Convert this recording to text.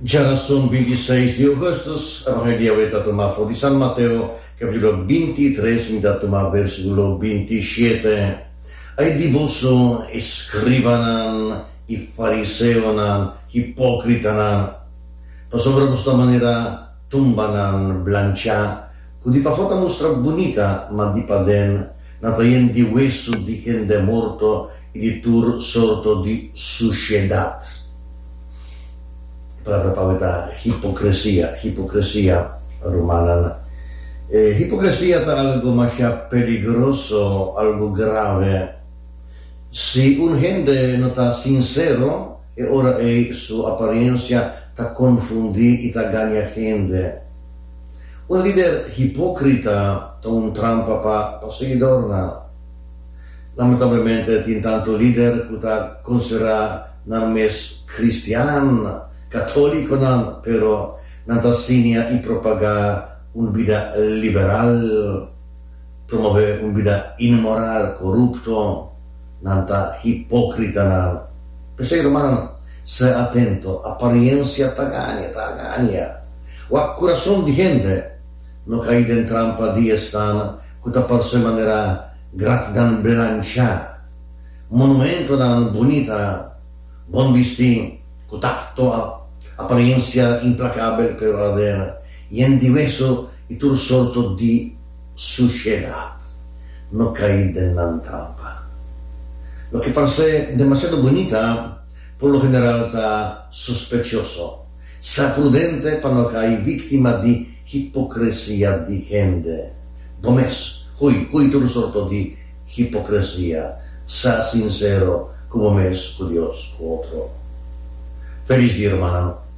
Djara son bintiseis di Augustus, Evangelio awor e ta tuma for di San Mateo, capitulo bintitres, mi ta tuma versiculo bintiashete. Ai di boso, escribanan i fariseonan, hipocritanan! Pasobra bo sta manera. Tumbanan blanchá ku di pafó ta mustra bunita, ma di paden nan ta yen di wesu di hende morto i di tur sorto di sushedat. E palabra pau ei ta hipokresia, hipokresia, rumannan. E hipokresia ta algu mashá peligroso, algu grave. Si un hende no ta sinsero, E ora ei su aparensia ta konfundí i ta gaña hende. Un lider hipókrita ta un trampa pa pa seguidornan. Lamentablemente tin tantu lider ku ta konsiderá nan mes kristian katólikonan, pero nan ta siña i propagá un bida liberal. Promové un bida inmoral, korupto, nan ta hipókritanan. P'esei, rumannan, sè atento, apariensia ta gaña, ta agaña. Wak kurason di hende, no kai den trampa di esnan ku ta parse manera grafnan blanchá, monumentonan bunita, bon bisti, ku takto, apariensia implakabel, pero aden yen di weso. I tur sorto di sushiedat no kai den nan trampa. Loke parse demasiado bunita por lo general ta sospechioso. Sa prudente pa no kai victima di hipocresia di hende. Bo mes, hui, hui tur sorto di hipocresia. Sa sincero cu bo mes, cu Dios, cu otro. Feliz Dia Rumannan.